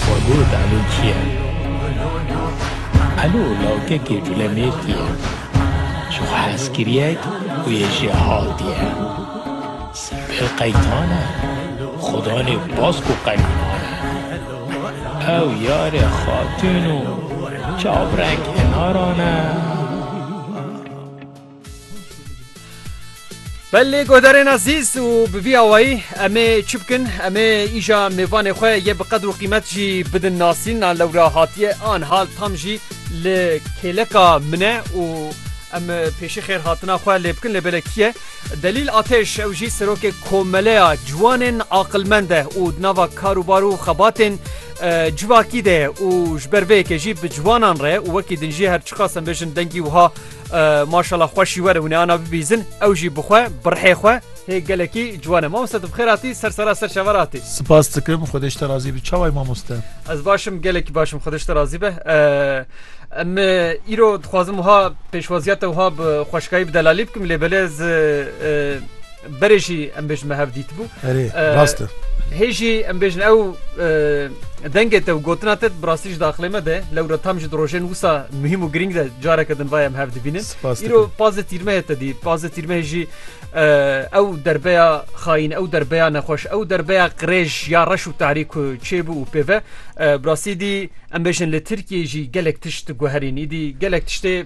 Xwedê dano çiye? Elo lawkekê culemêrkî ye. Ji xwe hez kiriye ku yê jê hatiye. Sibê qeytan e. Xudanê baz ku qeytan e. Ew yarê xatûn û çavrek henaran e. Belê guhdarên ezîz û bi vî awayî em ê çi bikin? Em ê îja mêvanê xwe yê bi qedr û qîmet jî bidin nasîn a lewra hatiye an hal tam jî li kêleka min e û em pêşî xêr hatina xwe lê bikin lê belê kî ye? Delîl Atêş ew jî serokê komeleya ciwanên aqilmend e û di nava kar û bar û xebatên civakî de ye û ji ber vê yekê jî bi ciwanan re û wekî din jî her çiqas em bêjin dengî wiha Maşala xweşî were hûnê ana bibîzin ew jî bixwe birhê xwe hê gelekî ciwane mamoste tu bixêr hatî ser sera ser şever hatî Spas dikim xwedeş te razî bi çaway mamoste Ez başim gelekî başim xwedeş te razî be em îro dixwazim wiha pêşwaziya te wiha bi xweşkayî bi delalî bikim lê belê ez Berê jî em bêjin me hev dît bû. Erê rast e. Hê jî em bêjin ew dengê te û gotina te bi rastî ji daxilê me de lew re tam ji di rojên wisa muhîm û girîng de careke din vayem hev dibînin. Îro pazê tîrmehê te dî pazê tîrmehê jî ew derbeya xayîn ew derbeya nexweş ew derbeya qirêj ya reş û tarî ku çêbû û pêve bi rastî dî em bêjin li Tirkiyê jî gelek tişt guherîn îdî gelek tiştê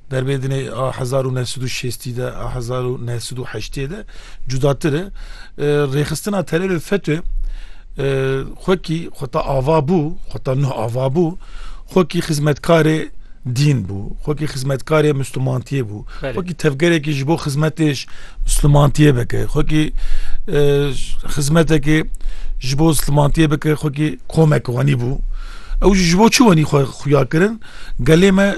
Derbê dinê a hezar û neh sed û şêstî de a hezar û neh sed û heştê de cudatir e. Rêxistina terorê FETÖ xwekî xwe ta ava bû, xwe ta nuh ava bû, xwekî xizmetkarê dîn bû, xwekî xizmetkarê Mislumantiyê bû, xwekî tevgerekî ji bo xizmetê ji Mislumantiyê bike, xwekî xizmetekê ji bo Mislumantiyê bike, xwekî komek wenî bû. Ew jî ji bo çi wenî xwe xuya kirin? Gelê me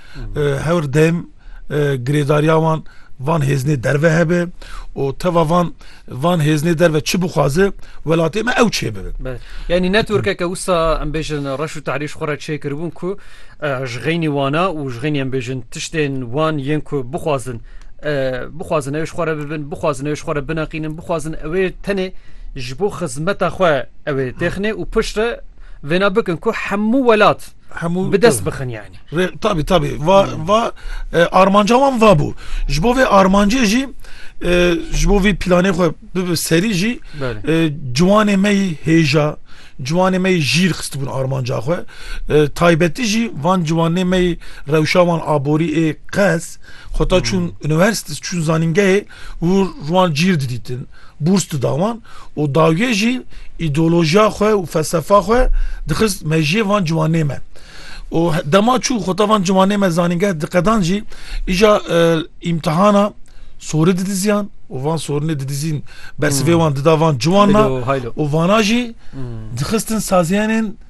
Hewr dem girêdariya wan van hêzinê derve hebe û teva van van hêzinê derve çi bixwaze welatê me ew çê bibe. Yanî ne Turkeke wisa em bêjin reş û tarîş xwe re çêkiribûn ku ji xeynî wana û ji xeynî em bêjin tiştên wan yên ku bixwazin bixwazin ew ji xwe re bibin bixwazin ew ji xwe re bineqînin bixwazin ewê tenê ji bo xizmeta xwe ewê têxinê û piştre vêna bikin ku hemû welat hemû bi dest bixin yanî. Tabî tabî va va armanca wan va bû. Ji bo vê armancê jî ji bo vî planê xwe bibi serî jî ciwanê me yî hêja ciwanê me yî jîr xistibûn armanca xwe. Taybetî jî van ciwanê me yî rewşa wan aborî ê qez xwe ta çûn universtes çûn zanîngehê û wan cîr didîtin, bûrs dida wan û dawiyê jî îdeolojiya xwe û felsefa xwe dixist mejiyê van ciwanê me. û dema çû xweta van ciwanê me zanîngeh diqedan jî îja îmtihana sorî didiziyan û van sorinê didizîn bersivê wan dida van ciwan na û vana jî dixistin saziyanên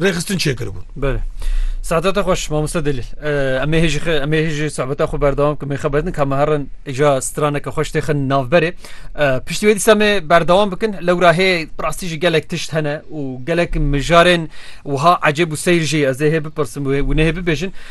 rêxistin çêkiribûn. Belê. Saeta te xweş mamoste delîl. Em ê hêjî em ê hêjî sohbeta xwe berdewam kim ê xebetin ka me herin îja straneke xweş têxin navberê. Piştî wê dîsa me berdewam bikin lewra hê rastî jî gelek tişt hene û gelek mijarên wiha ecêb û seyr jî ez ê hê bipirsim wê wê nehê bibêjin.